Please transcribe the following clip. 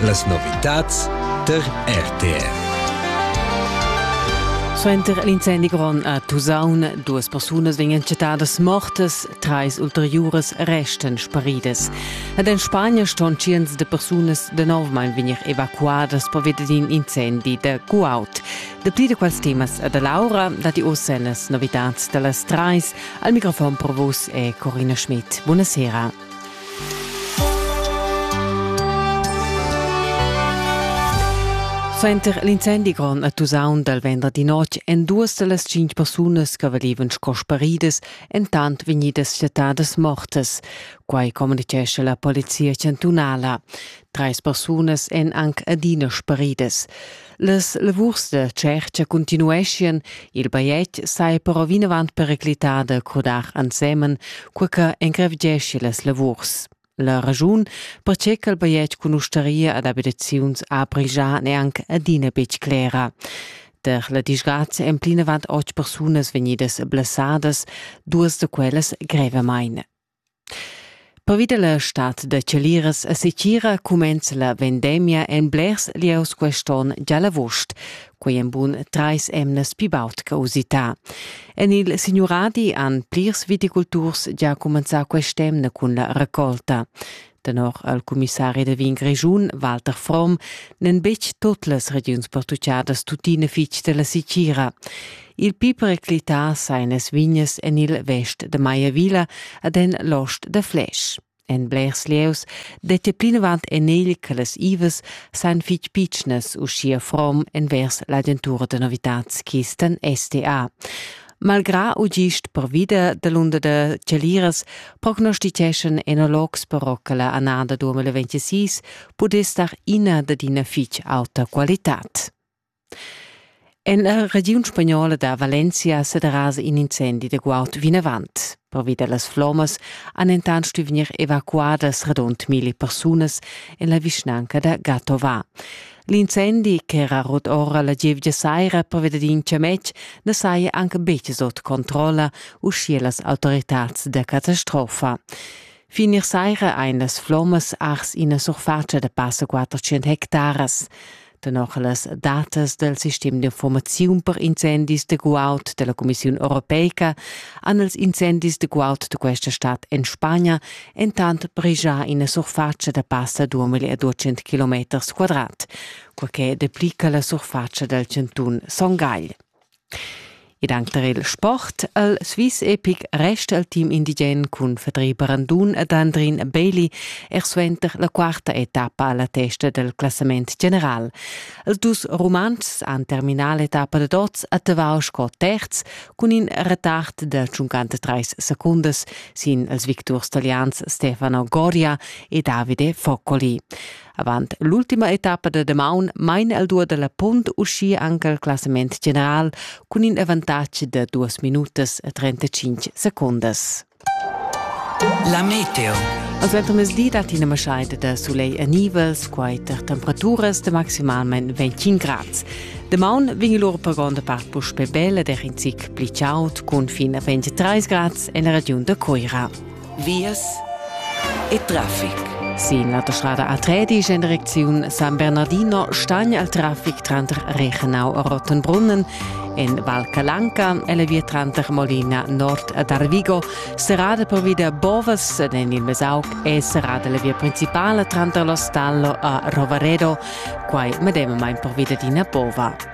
Las novitads tar RTR. Suenter l'incendi grond a Tusaun, duas persunas vegnan chattadas mortas, trais ulteriuras restan sparidas. Ed en Spagna ston tschients de persunas danovmain vegnir evacuadas per via d'in incendi da Guaut. Dapli da quels temas da Laura, dati oz las novitads da las trais. Al microfon per vos è Corina Schmidt. Buonasera. Suenter l'incendi grond a Tusaun dal venderdi notg èn duas da las cinq persunas che valevan sco sparidas entant vegnidas chattadas mortas. Quai communitgescha la polizia chantunala. Trais persunas èn anc adina sparidas. Las lavurs da tschercha continueschien, il bajetg sai però vinavant periclitar da crodar ensemen, cur che engrevgeschi las lavurs. La ragiun, perche ch'el bajetg cun ustaria ad abitaziuns april già neanc adina betg clera. Der la disgrazia emplinavant otg persunas vegnidas blessadas, duas da quellas grevamain. Pervi da la stad da chaliras a Setgira cumenza la vendemia en blers lieus quest onn gia l'avust. Quei en bun trais emnas pli baud che usità. En il Signuradi han plirs viticulturs gia cumenzà quest'emna cun la raccolta. Tenor al cumissari da vin Grischun, Walter Fromm, n'en betg tut las regiuns portugiadas tuttina fitg della Sicira. Il pi periclità sain es vignes en il vest de Maiavilla ad en l'ost de Flesch. En blers lieus dette plinavant en egl che las ives sain fitg pitschnas uschia Fromm envers l'agentura de novitats chisten STA. Malgrà u gist pervida dalunder da cheliras prognostiteschan enologs però che la annada 2026 pudess dar ina dad ina fitg auta qualitad. En la regiun spagnola da Valencia sederasa in incendi da guaud vinavant. Pervi da las flommas han entant stuì vegnir evacuadas radund milli persunas en la vischnanca da Gatova. L'incendi ch'era rut ora la gievgia saira pervi dad in chametg na saja anche betg sut controlla, uschia las autoritads da catastrofa. Fin ier saira ein las flommas ars ina surfatscha da passa 400 hectaras. tenor las datas del sistem d'informaziun per incendis de guaud della Commissiun europeica han els incendis de guaud de questa stad en Spagna entant brigia ina surface da passa 2200 km quadrat, quaché deplica la surface del centun Son Gagl. Ed anc tar il sport. El Swiss epic resta il team indigen cun Fedri Brandun ed Andrin Bailey er suenter la quarta etappa a la testa dal classament general. Els dus Rumantschs han terminà l'etappa da dots a Tavau sco terz cun in retard da 53 secundas sin ils victurs talians Stefano Goria e Davide Foccoli. Avant l'ultima etappa da damaun main el duo dalla punt uschia anche il classament general cun in avantatg da duas minutas e 35 secondas. La meteo. Als ventermezdi dat ina maschaida da soleil e nivels, quai tar temperaturas de maximalment 25 grads. Demaun vegn lur per gronda part puspè bella ed er in zic pli chaud, cun fin a 23 grads en la regiun da Coira. vias e traffic. Sin la autostrada A3 ist in Direktion San Bernardino Stagn al Traffic tranter Reichenau e Rottenbrunnen. In Val Calanca eleviert tranter Molina Nord ad Arvigo, serrada per via Bovas en il Mesauc e serrada la via principale tranter Lo Stallo e Rovaredo, quai medemamain per via d'ina bova.